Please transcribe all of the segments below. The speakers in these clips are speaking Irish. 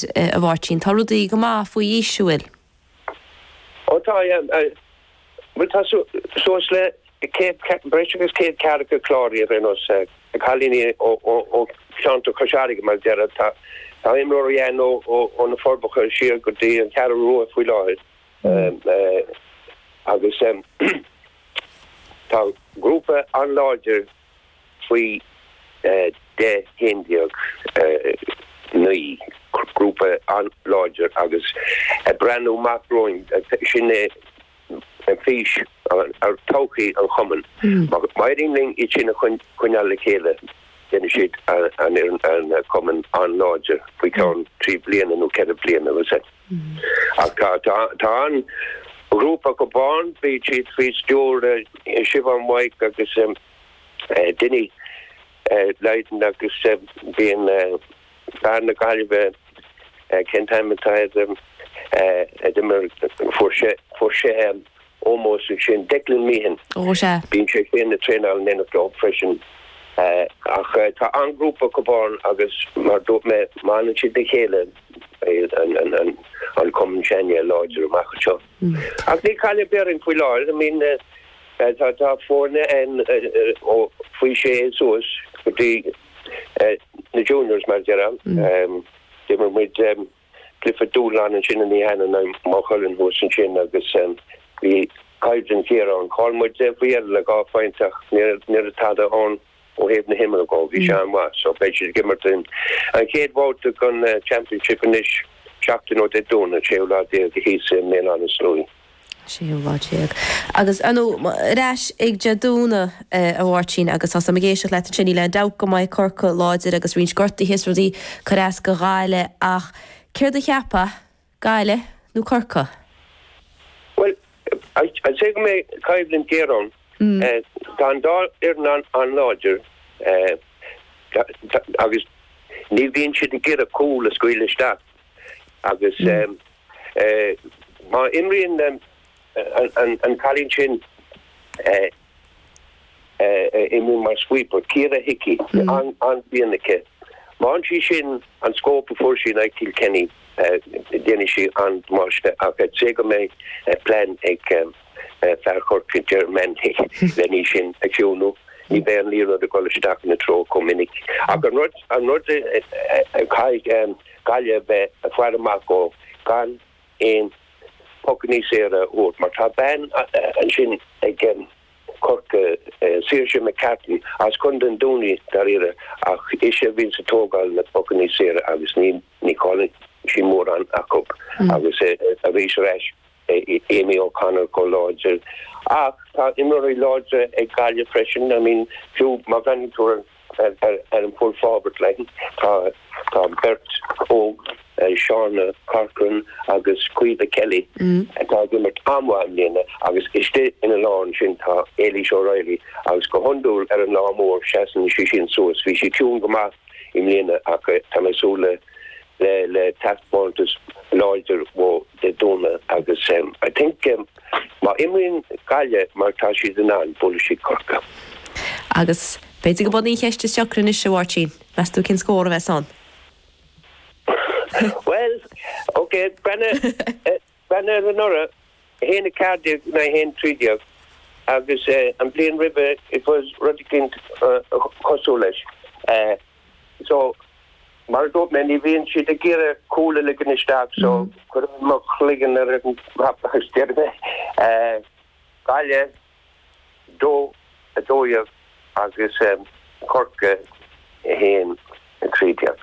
a Mháirtín, tá rudaí go maith faoi aois, nach bhfuil? Ó tá, bhuel tá suas le céad, breis agus céad ceathracha cláraithe ar aon nós, cailíní ó cheantar Chois Fharraige mar a déarfá, tá imreoirí ann ó na Forbacha siar go dtí an Cheathrú Rua faoi láthair agus tá grúpa an-láidir Faoi 10, 11, 9, grúpa an-láidir agus ag breathnú amach romhainn, sin é fís todhchaí an Chumainn. Má éiríonn linn iad sin a choinneáil le chéile, déanfaidh siad an Cumann an-láidir faoi cheann trí bliana nó ceithre bliana. Ach tá an-ghrúpa acu ann, bíonn siad faoi stiúir Siobhán White agus Dinny Lydon agus bíonn fear na Gaillimhe, cén t-ainm atá air, a d'imir, fuair sé, fuair sé. ómós ansin. Declan Meehan, Ó, sea. bíonn sé féin ag traenáil in éineacht leo freisin. Ach tá an-ghrúpa acu ann agus mar dúirt mé, má fhanann siad le chéile an cumann an-láidir amach anseo. Ach níl cailleadh ar bith orainn faoi láthair, I mean tá foirne ann ó faoi sé suas go dtí na juniors mar a déarfá. D'imir muid. Clifford Doolan ansin in Eanach Dhúin, Maigh Cuilinn thuas ansin agus bhí coimhlint géar ann. Chaill muid é faoi dheireadh le dhá phointe ach ní raibh tada ann ó thaobh na himeartha dhó. Bhí sé an-mhaith so beidh siad ag imirt an chéad bhabhta den Championship anois seachtain ó Dé Domhnaigh, séú lá déag, thíos i mBéal Átha na Sluaighe. séú lá déag. Agus ar ais ag Dé Domhnaigh, a Mháirtín, agus tá fhios agam ag éisteacht leat ansin. Níl aon dabht go mbeidh Corcaigh láidir agus roinnt gortaithe is rudaí ag cur as do Ghaillimh, ach céard a cheapfá, Gaillimh nó Corcaigh? Bhuel, I'd say go mbeidh coimhlint géar ann. Tá an dá fhoireann an-láidir agus ní bhíonn siad ag iarraidh cúl a scaoileadh isteach agus Má imríonn an cailín sin a imríonn mar sweeper, Ciara Hickey, an-bhliain aici. Má fhaigheann sí sin an scóp a fuair sí in aghaidh Kilkenny déanfaidh sí an-damáiste ach I'd say go mbeidh plean ag fear Chorcaí Ger Manley lena í sin a chiúnú. Ní bheidh an liathróid ag dul isteach ina treo chomh minic ach an rud a chaithfidh Gaillimh a bheith ag faire amach dó, gan aon phocanna saora a thabhairt mar tá bean ansin ag Corcaigh, Saoirse McCarthy as contae an Dúin í, dáiríre, ach ise a bhíonns ag tógáil na bpocanna saora agus ní chailleann sí mórán acu agus aríst. Beidh Amy O'Connor chomh láidir. Ach tá imreoirí láidir ag Gaillimh freisin. I mean, fiú má bhreathnaíonn tú ar an full forward line, tá an beirt óg, Seán Corcoran agus Caoimhe Kelly, atá ag imirt an-mhaith i mbliana. Agus istigh ina lár ansin, tá Ailish O'Reilly agus go hiondúil ar an lá mór, seasann sí sin suas. Bhí sí ciúin go maith i mbliana ach tá mé ag súil le le le taispeántas láidir uaithi Dé Domhnaigh agus I think má imríonn Gaillimh mar tá siad in ann, buailfidh siad Corcaigh. Agus b'fhéidir gurb í an cheist is deacra anois, a Mháirtín, meas tú cén scór a bheas ann? Bhuel, ok, breathnaigh. Ba anuraidh, a haon a ceathair déag, a haon a trí déag, agus an bhliain roimhe it was rud eicínt cosúil leis. So, mar a dúirt mé, ní bhíonn siad ag iarraidh cúl a ligean isteach so cuirfidh mé mo chloigeann ar an mapa, is déarfaidh mé. Gaillimh. dó, a dó dhéag agus Corcaigh a haon, a trí déag.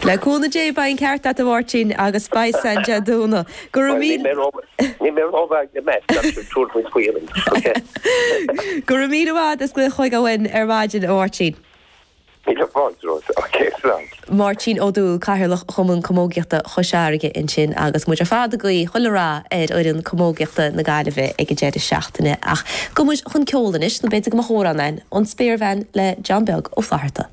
Le cúnamh Dé, beidh an ceart agat, a Mháirtín, agus beidh sin Dé Domhnaigh. Go raibh míle. Bhuel, níl mé ró-mhaith le maths, ach tabhair faoi deara, OK? Go raibh míle maith agat as glaoch chugainn ar maidin, a Mháirtín. Míle fáilte romhat a Cháit slán. Máirtín Ó Dúill, Cathaoirleach Chumann Camógaíochta Chois Fharraige ansin agus muid ar fad ag guí chuile rath ar fhoireann camógaíochta na Gaillimhe ag an deireadh seachtaine. Ach gabhfaidh muid chun ceoil anois, nó b'fhéidir go mba chóir dom a rá amhrán, An Spéirbhean le John Beag Ó Flatharta.